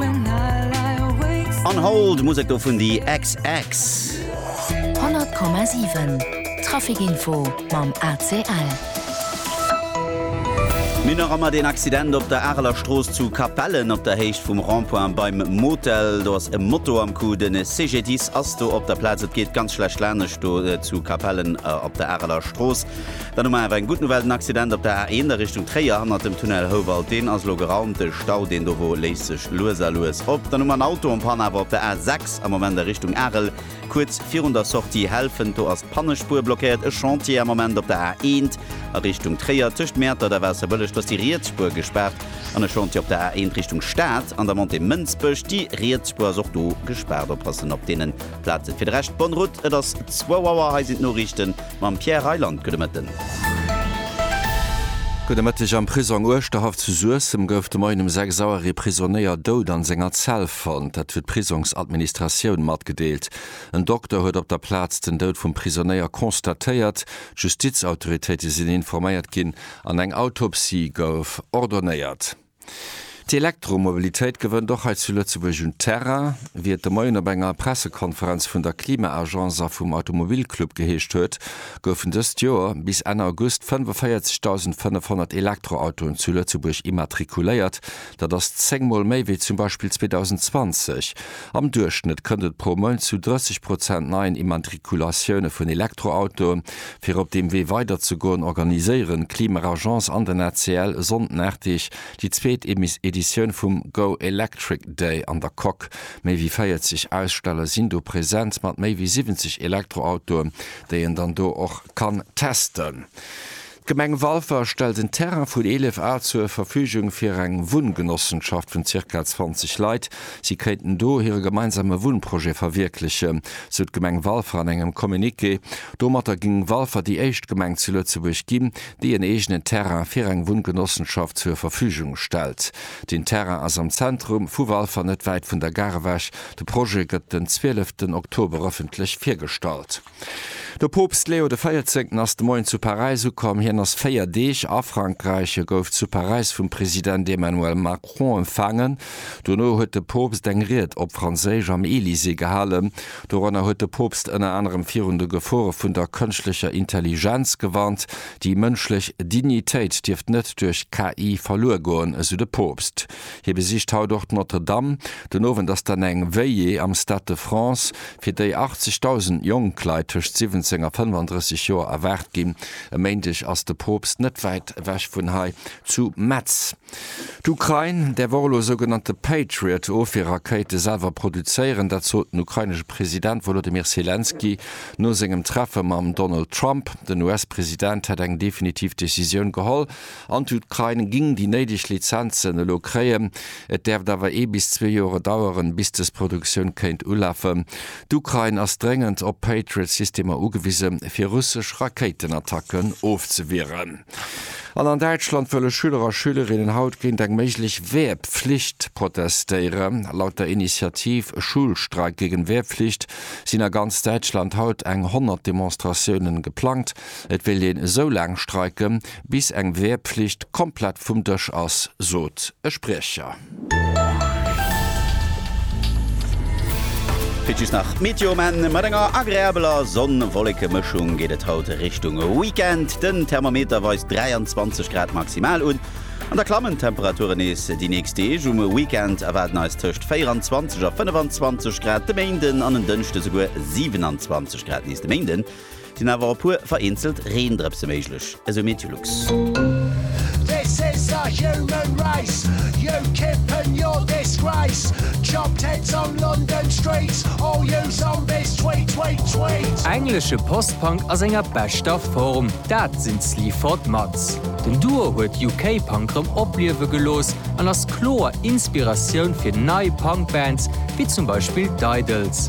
An Hold, Musek do vun The XX. 100,7 Traficinfo mam ACL. Mir hunn nach ëmmer deen Accident op der Areler Strooss zu Capellen op der Héicht vum Rond-point beim Motel. Do ass e Moto am Coup. De CGDIS ass do op der Plaz. Et geet ganz schlecht laanescht do zu Capellen op der Areler Strooss. Dann hu mer awer eng gutt Nouvelle, den Accident op der A1 a Richtung Tréier hannert dem Tunnel Houwald, deen ass elo geraumt. De Stau, deen dowo, léist sech lues a lues op. Dann hu mer en Auto en Panne awer op der A6 am Moment a Richtung Arel, kuerz virun der Sortie Helfent. Do ass d'Pannespuer blockéiert. E Chantier am Moment op der A1 a Richtung Tréier, tëscht Mäertert a Waasserbëlleg. Do ass déi riets Spuer gespaart. An e Chantier op der A1 Richtung Stad an der Montée Mënsbech. Déi riets Spuer ass och do gespaart. Oppassen op deenen Plazen. Fir de Rescht, bonne route. Et ass zwou Auer, hei sinn d'Noriichten. Mam Pierre Reyland, gudde Mëtten. Gudde Mëtteg. Am Prisong Uerschterhaff zu Suessem gouf de Moien um 6 Auer ee Prisonéier dout an senger Zell fonnt. Dat huet d'Prisongsadministratioun matgedeelt. En Dokter huet op der Plaz den Dout vum Prisonéier constatéiert. D'Justizautoritéite sinn informéiert ginn an eng Autopsie gouf ordonéiert. D'Elektromobilitéit gewënnt och hei zu Lëtzebuerg un Terrain. Wéi et de Moien op enger Pressekonferenz vun der Klima-Agence a vum Automobilclub geheescht huet, goufen dëst Joer bis Enn August 45.500 Elektroautoen zu Lëtzebuerg immatrikuléiert. Dat ass zéng Mol méi wéi zum Beispill 2020. Am Duerchschnëtt kënnt et pro Mount zu 30 Prozent neien Immatrikulatioune vun Elektroautoe Fir op deem Wee weiderzegoen, organiséieren d'Klimaagence an den ACL e Sonnden Arteg déi zweet Editioun vum Go Electric Day an der Coque. Méi wéi 40 Aussteller sinn do present mat méi wéi 70 Elektroautoen, déi een dann do och kann testen. D'Gemeng Walfer stellt en Terrain vun 11 Ar zur Verfügung fir eng Wunngenossenschaft vun zirka 20 Leit. Si kéinten do hire gemeinsame Wunnprojet verwierklechen, sou d'Gemeng Walfer an engem Communiqué. Domatter géing Walfer déi éischt Gemeng zu Lëtzebuerg ginn, déi en eegenen Terrain fir eng Wunngenossenschaft zur Verfügung stellt. Den Terrain ass am Zentrum vu Walfer, net wäit vun der Gare ewech. De Projet gëtt den 12 Oktober ëffentlech virgestallt. De Poopst Leo de Véierzéngten ass de Moien zu Paräis ukomm. Hien ass 4 Deeg a Frankräich. E gouf zu Paräis vum President Emmanuel Macron empfaangen. Dono huet de Poopst eng Ried op Franséisch am Elysée gehalen. Doranner huet de Poopst ënner anerem virun de Gefore vun der kënschtlecher Intelligenz gewarnt. Déi mënschlech Dignitéit dierft net duerch KI verluer goen, esou de Poopst. Hie besicht haut och d'Notre Dame. Den Owend ass dann eng Veillée am Stade de France, fir déi 80.000 jonk Leit tëscht 17 a 35 Joer erwaart ginn. E Méindeg ass de Poopst net wäit ewech vun hei zu Metz. D'Ukrain däerf och elo sougenannte Patriot-Ofwierrakéite selwer produzéieren. Dat sot den ukrainesche President Wolodymyr Selenskyj no sengem Treffe mam Donald Trump. Den US-President hätt eng definitiv Decisioun geholl, An d'Ukrain ging déi néideg Lizenzen elo kréien. Et däerft awer ee bis zwee Jore daueren, bis dës Produktioun kéint ulafen. D'Ukrain ass dréngend op Patriot-Systemer ugewisen, fir russesch Rakéitenattacken ofzewieren. An an Däitschland wëlle Schüler a Schülerinnen haut géint eng méiglech Wehrpflicht protestéieren. Laut der Initiativ Schulstreik gegen Wehrpflicht sinn a ganz Däitschland haut eng 100 Demonstratiounen geplangt. Et wéilt een esou laang streiken, Bis eng Wehrpflicht komplett vum Dësch ass, sot e Spriecher. Fir just nach d'Meteo um Enn. Mat enger agreabeler Sonn-Wolleke-Mëschung geet et haut Richtung Weekend. Den Thermometer weist 23 Grad maximal un. An da klammen d'Temperature nees déi nächst Deeg. Um Weekend erwaarden eis tëscht 24 a 25 Grad de Méinden an en Dënschde souguer 27 Grad nees de Méinden. Sinn awer e puer vereenzelt Reendrëpse méiglech, esou Meteolux. Englesche Post-Punk a senger beschter Form, dat sinn d'Sleaford Mods. Den Duo huet UK-Punk rëm opliewe gelooss an ass kloer Inspiratioun fir nei Punk-Bands, wéi zum Beispill d'Idles.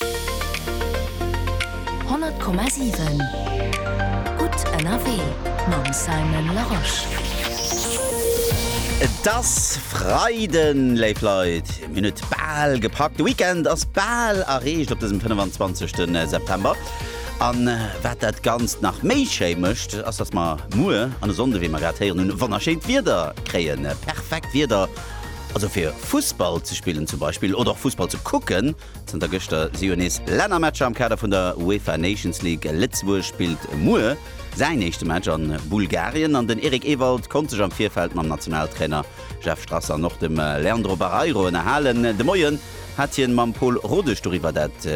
100,7 Gutt ënnerwee mam Simon Larosche. Et ass Freiden, léif Leit, mir hunn et bal gepackt, de Weekend ass bal erreecht op dësem 25 September. An wat dat Ganzt nach méi schéi mécht, ass datt mer muer an e Sonnde, wéi mer grad héieren hunn, wonnerschéint Wieder kréien, perfekt Wieder also fir Fussball ze spillen zum Beispill oder och Fussball ze kucken. Zënter gëschter si jo nees Lännermatcher am Kader vun der UEFA Nations League. Lëtzebuerg spillt muer säin éischte Match a Bulgarien an den Eric Ewald konnt sech am Virfeld mam Nationaltrainer Jeff Strasser an och dem Leandro Barreiro ënnerhalen. De Moien hat hien mam Pol Rodesch doriwwer dat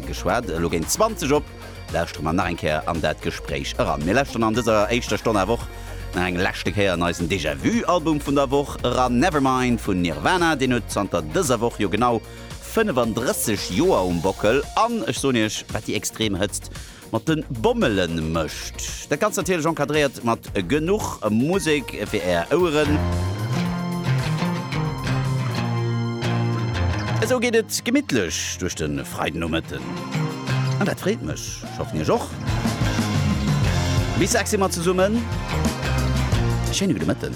geschwat. Elo géint 20 op lauschtere mer nach eng Kéier an dat Gespréich eran. Mir lauschteren an dëser éischter Stonn awer och nach eng leschte Kéier an eisen Déjà-vu Album vun der Woch eran. Nevermind vun Nirvana, deen huet zanter dëser Woch jo genau 35 Joer um Bockel an ech soen iech, wat déi extrem Hëtzt mat de Bommele mécht. Dat Ganzt natierlech encadréiert mat genuch Musek fir är Oueren. Esou geet et gemittlech duerch de Freidenomëtten an dat freet mech. Ech hoffen iech och. Bis sechs si mer zesummen. Schéine gudde Mëtten.